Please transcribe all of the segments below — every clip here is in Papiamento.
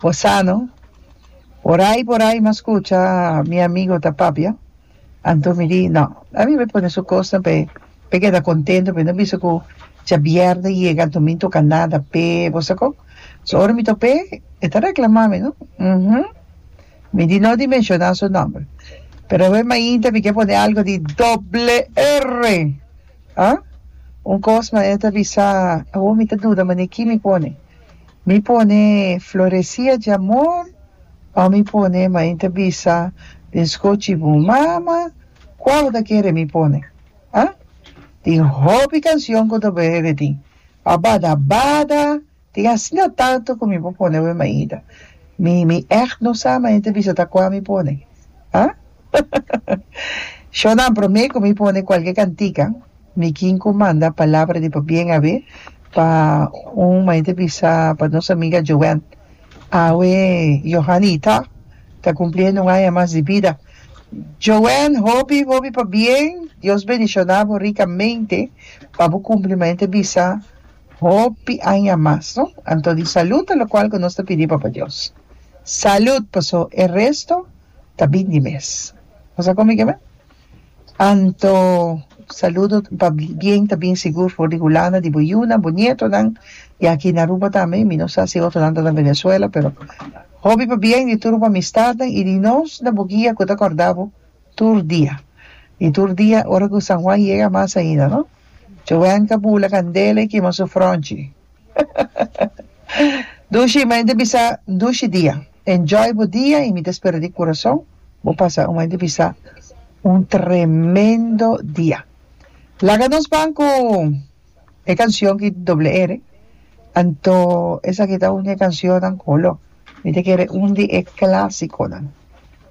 Bo sa no. Por ai por ai mas scucha mi amigo ta papia. Anto mi di no. A mi me pone su cosnan pe pe keda contento pe no bisa cu djabierde yega anto mi ntoca nada p'e bo sa con. So ora mi tok p'e e ta reclama mi no. Umm. Mi di no di menciona su nomber. Pero awe mainta mi ke pone algo di doble erre. Ha? Un kos ma e ta bisa, Awo mi ta duda mane ki mi pone. Mi pone Floresia di Amor o mi pone Main ta bisa den skochi bu mama? Kua bo ta kere mi pone? Ha? Tin hopi kansion ku ta bebe tin, Abada bada! Tin asina tantu ku mi por pone bo e maida. Mi mi echt no sa mañana ta bisa ta kua mi pone. Ha? Shownan promé ku mi pone kualke kantika mi kin ku manda palabra di pa bien awe pa un mañana ta bisa pa nos amiga Joanne. Awe Johanny Ita ta kumpliendo un aña mas di bida. Joanne hopi hopi pa bien. Dios bendishoná bo rikamente pa bo kumpli mañana ta bisa. Hopi aña mas, no? Anto di salud ta locual cu nos ta pidi Papa Dios. Salud! Paso e resto ta bin di mes. Bo sa con mi ke me? Anto salud pa bien ta bin sigur for di Hulanda, di bo yunan, bo nietonan, y aki na Aruba tambe. Mi no sa si otronan ta na Venezuela, pero hopi pa bien di tur bo amistadnan y di nos na bo guia cu ta corda bo tur dia. Y tur dia ora cu San Juan yega mas ainda, no? Jowenka bula kandela i kima su fronchi. Dushi, mei di bisa un dushi dia. Enjoy bo dia i mi ta spera di kurason bo pasa un mei di bisa un tremendo dia. Laga nos ban ku e kansion ki doble R, anto esaki ta un di e kansionnan ku lo mi ta kere un di e klasikonan.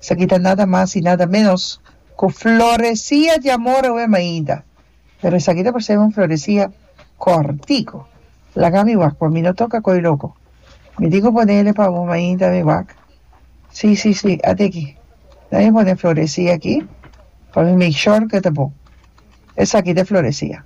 Esaki ta nada mas i nada menos ku Floresia di amor awema ainda. Pero esaki ta por ser un floresia cortico. Laga mi wak pa mi no toca coi loco. Mi tin cu ponele pa bo mainta mi wak. Si, si, si, ate aki. Dame mi pone floresia aki pa mi make sure cu ta bon. Esaki ta e floresia.